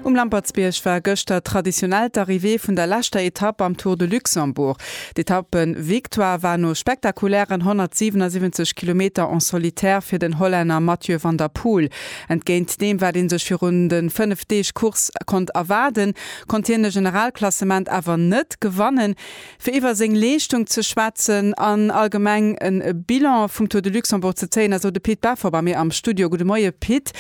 Um Lampertsbierg war gëschter traditionell d'Arrivée vun der leschter Etapp am Tour de Luxembourg. D'Etappe-Victoire war no spektakulären 177 Kilometer en solitaire fir den Hollänner Mathieu van der Poel. Entgéint deem, wat ee sech virun de fënnef Deeg Course konnt erwaarden, konnt hien de Generalklassement awer net gewannen. fir iwwer seng Leeschtung ze schwätzen an allgemeng e Bilan vum Tour de Luxembourg ze zéien, ass elo de Pit Beffer bei mir am Studio. Gudde Moie Pit.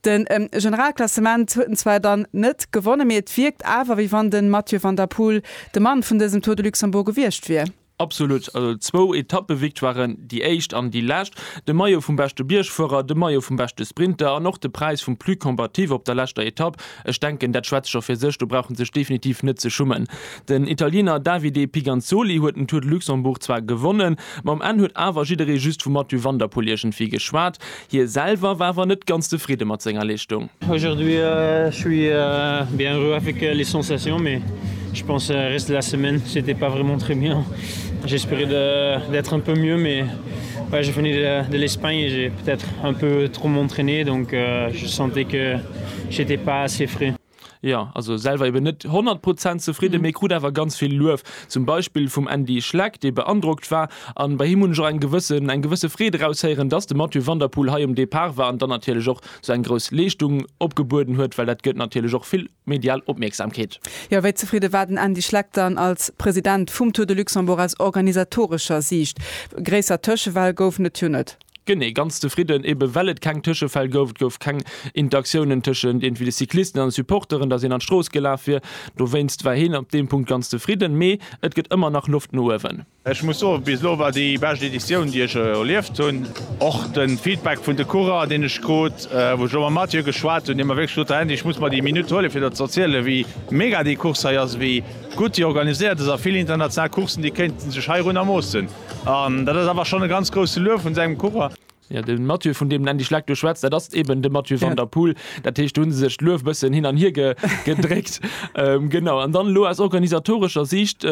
De Generalklassement huet en zwar dann net gewonnen, mee et wierkt awer, wéi wann de Mathieu van der Poel de Mann vun dësem Tour de Luxembourg gewiescht wier. Absolut, zwou Etappevictoiren, déi éischt an déi lescht, de Maillot vum beschte Biergfuerer, de Maillot vum beschte Sprinter an och de Präis vum Plus Combatif op der leschter Etapp, Ech denken, dat schwätzt scho fir sech, do brauch en sech definitiv net ze schummen. Den Italiener Davide Piganzoli huet den Tour de Luxembourg zwar gewonnen, ma um Enn huet awer jidderee just vum Mathieu van der Poel iergendwéi geschwat. Hie selwer war awer net ganz zefridde mat senger Leeschtung. Aujourd'hui je suis bien heureux avec les sensations mais je pense reste de la semaine c'etait pas vraiment très bien j'espérais d'être un peu mieux mais ouais je venais de l'Espagne et j'ai peut-être un peu trop m'entraîner donc je sentais que J'étais pas assez frais. Jo, also selwer eben net 100 Prozent zefridden, mee krut awer ganz vill Luef, zum Beispill vum Andy Schleck, dee beandrockt war. An bei him hunn ech och eng gewëssen, eng gewësse Freed eraushéieren, dass de Mathieu van der Poel hei um Depart war an dann natierlech och sou eng grouss Leeschtung opgebueden huet, well dat gëtt natierlech och vill medial Opmierksamkeet. Jo, wéi zefridde war den Andy Schleck dann als President vum Tour de Luxembourg aus organisatorescher Siicht? Gréisser Tëschefäll goufen et jo net. Genee, ganz zefridden, ebe well et keng Tëschefäll gouf. Et gouf keng Interaktiounen tëschent iergendwéi de Cyclisten an de Supporteren, dass een an d'Strooss gelaf wier. Dowéinst war hien op deem Punkt ganz zefridden. Mee et gëtt ëmmer nach Loft no uewen. Ech muss soen, bis elo war déi bescht Editioun, déi ech erlieft hunn. Och de Feedback vun de Coureuren, deen ech krut, wou ech elo mam Mathieu geschwat hunn, dee mer wierklech sot, Här Hendy, ech muss mer déi Minutt huelen, fir der ze erzielen, wéi mega déi Course hei ass, wéi gutt déi organiséiert ass a vill international Coursen, déi kéinte sech heirunner moossen. An dat ass awer schonn e ganz grousse Luef vun sengem Coureur. Jo, de Mathieu, vun deem en endlech lek do schwätzt, dat ass eben de Mathieu van der Poel. Dat heescht, do hu se sech d'Luef e bëssen hin an hier gedréckt. Genau. An dann elo aus organisatorescher Siicht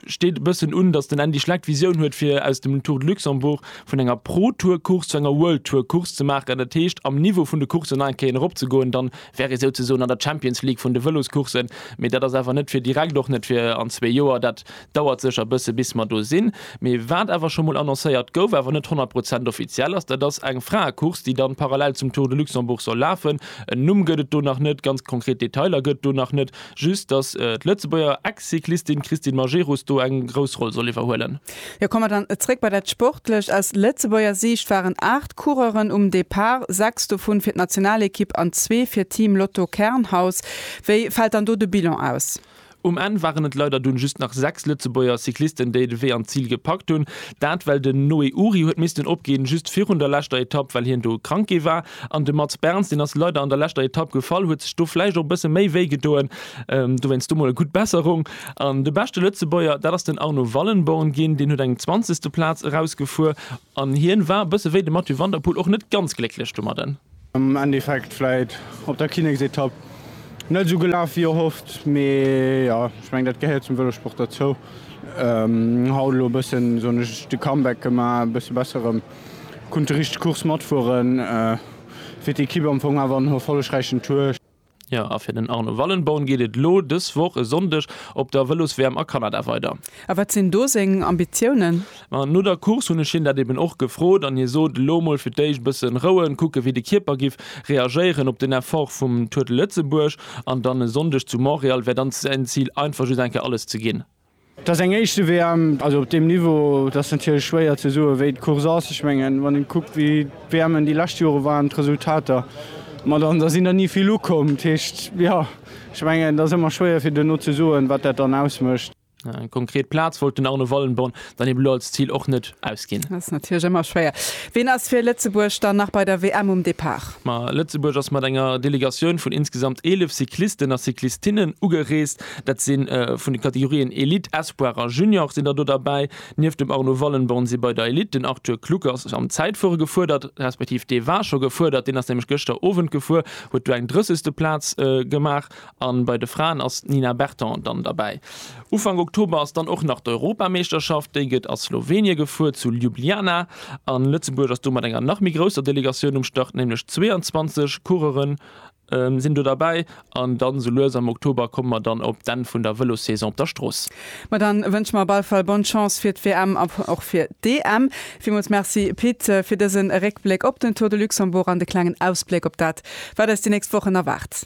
steet e bëssen un, datt den Andy Schleck d'Visioun huet, fir aus dem Tour de Luxembourg, vun enger Pro-Tour-Course zu enger World-Tour-Course ze maachen. Dat heescht, am Niveau vun de Courssen nach eng Kéier erop ze goen. Da wär ee souzesoen an der Champions League vun de Vëloscoursen. Mee dat ass awer net fir direkt, och net fir an zwee Joer. Dat Dauert sécher bësse bis mer do sinn, mee wat awer scho mol annoncéiert gouf, awer net 100 Prozent offiziell ass, dat ass eng Fraecourse, déi dann parallel zum Tour de Luxembourg soll lafen. En Numm gëtt et do nach net, ganz konkret Detailer gëtt et do nach net, just dass d'Lëtzebuerger Ex-Cyclistin Christine Majerus do eng grouss Roll soll iwwerhuelen. Jo, komme mer dann zréck bei dat Sportlecht. Aus Lëtzebuerger Siicht waren 8 Coureuren um Depart, 6 dovun fir d'Nationalekipp an zwee fir Team Lotto Kernhaus. Wéi fält dann do de Bilan aus? Um Enn waren et leider dunn just nach 6 Lëtzebuerger Cyclisten déi de Wee an d'Zil gepackt hunn. Dat well den Noé Uhry huet missten opginn, just virun der leschter Etapp, well hien do krank gi war. An de Mats Berns, deen ass leider an der leschter Etapp gefall, huet sech do vläicht och e bësse méi wéi gedoen. Dowéinst do mol e gutt Besserung. An de beschte Lëtzebuerger, dat ass den Arno Wallenborn ginn, deen huet eng zwanzegste Plaz erausgefuer. An hien war, bësse wéi de Mathieu van der Poel, och net ganz glécklech domadden. Am Endeffekt vläit op der Kinneksetapp net esou gelaf wéi erhofft, mee jo, ech mengen dat gehéiert zum Vëlosport dozou. Haut elo e bëssen, soen ech, de Comeback gemaach, e bësse besser erëm kunt déi richteg Course matfueren, fir d'Ekipp am Fong awer en erfollegräichen Tour. Jo a fir den Arno Wallenborn geet et elo dës Woch e Sonndeg op der Vëlos-WM a Kanada weider. A wat sinn do seng Ambitiounen? Ma no der Course hunn ech hien dat eben och gefrot an hie sot, elo mol fir d'éischt bëssen rouen, kucke wéi de Kierper giff reagéieren op den Effort vum Tour de Lëtzebuerg an dann e Sonndeg zu Montréal wär dann säin Zil einfach just eng Kéier alles ze ginn. Et ass eng éischte WM, also op deem Niveau. Et ass natierlech schwéier ze soen, wéi d'Course ass. Ech mengen, wann ee kuckt, wéi d'WMen déi lescht Jore waren, d'Resultater, ma dann ass een der ni vill ukomm. Dat heescht, jo, ech mengen, et ass ëmmer schwéier fir duerno ze soen, wat dat dann ausmécht. Eng konkret Plaz wollt den Arno Wallenborn dann eben elo als Zil och net ausginn. Ass natierlech ëmmer schwéier. Wien ass fir Lëtzebuerg dann nach bei der WM um Depart? Ma Lëtzebuerg ass mat enger Delegatioun vun insgesamt 11 Cyclisten a Cyclistinnen ugereest. Dat si vun de Kategorien Elite, Espoir a Junior sinn der do derbäi. Nieft dem Arno Wallenborn si bei der Elite den Arthur Kluckers am Zäitfuere gefuerdert, respektiv dee war scho gefuerdert, deen ass nämlech gëschter Owend gefuer, huet do eng drëssegste Plaz gemaach. A bei de Fraen ass d'Nina Berton dann derbäi. Ufank Oktober ass dann och nach d'Europameeschterschaft, déi gëtt a Slowenie gefuer, zu Ljubljana. A Lëtzebuerg ass do mat enger nach méi grousser Delegatioun um Start, nämlech 22 Coureuren Sinn do derbäi an dann esou lues am Oktober komme mer dann op d'Enn vun der Vëlossaison op der Strooss. Ma dann wënsche mer op alle Fall Bonne Chance fir d'WM a och fir d'EM. Villmools Merci Pit fir dësen Réckbléck op den Tour de Luxembourg an de klengen Ausbléck op dat wat eis déi nächst Wochen erwaart.